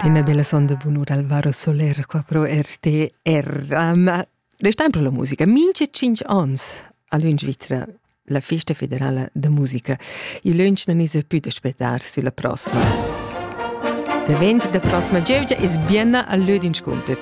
Ina bella sonda bunura Alvaro Soler qua pro RTR. Um, restam pro la musica. Minche 5 ans all'un Svizzera la festa federala da musica. Il lunch non is più da aspettare sulla prossima. Davent da prossima gievgia es bienna al lö d'inscunter.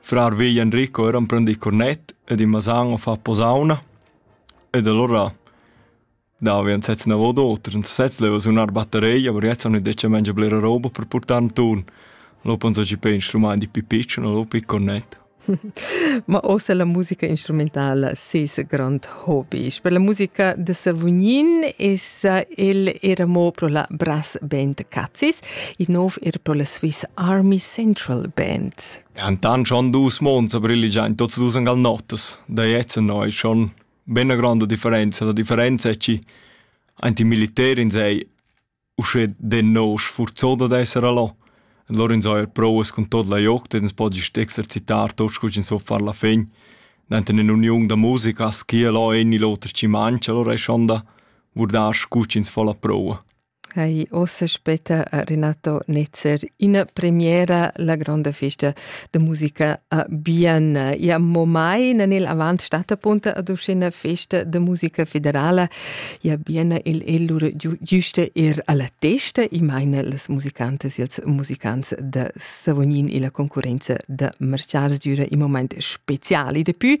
Frar vegl Enrico era emprendì cornet ed in masan a far posauna. Ed alura davi en sez navot oter. En sez leva sunar batterei, aber jetzt haben die Menschen blera roba per portar in turn. Lo penso ci per instrument di pipiccio, lo pi cornet. Ma ossa la musica instrumentale ses grand hobby. Per la musica de Savognin is il era mo pro la brass band Cazzis il nov er pro la Swiss Army Central Band. Han dann schon dus Monate brilligiant tots dus angal notas, da jetzt noi schon benna grande differenza, la differenza è ci anti militär in sei usche de no sforzoda d'essere là. Lor in so er proes con tot la joc, den podi exercitar tots cus in so far la fin. Danten in union da musica, schi là in l'oter ci mancha, lor è schon da vurdar scucins fa la proa. Hai ossa spetta a Renato Netzer ina premiera la gronda festa de musica a Bienna. Ja mo mai na nel avant stata punta ad uscina festa de musica federala. Ja Bienna il ellura giusta er alla testa i meine las musicantes ils musicants de Savognin e la concorrenza de Marciars düra i moment speciali. Depui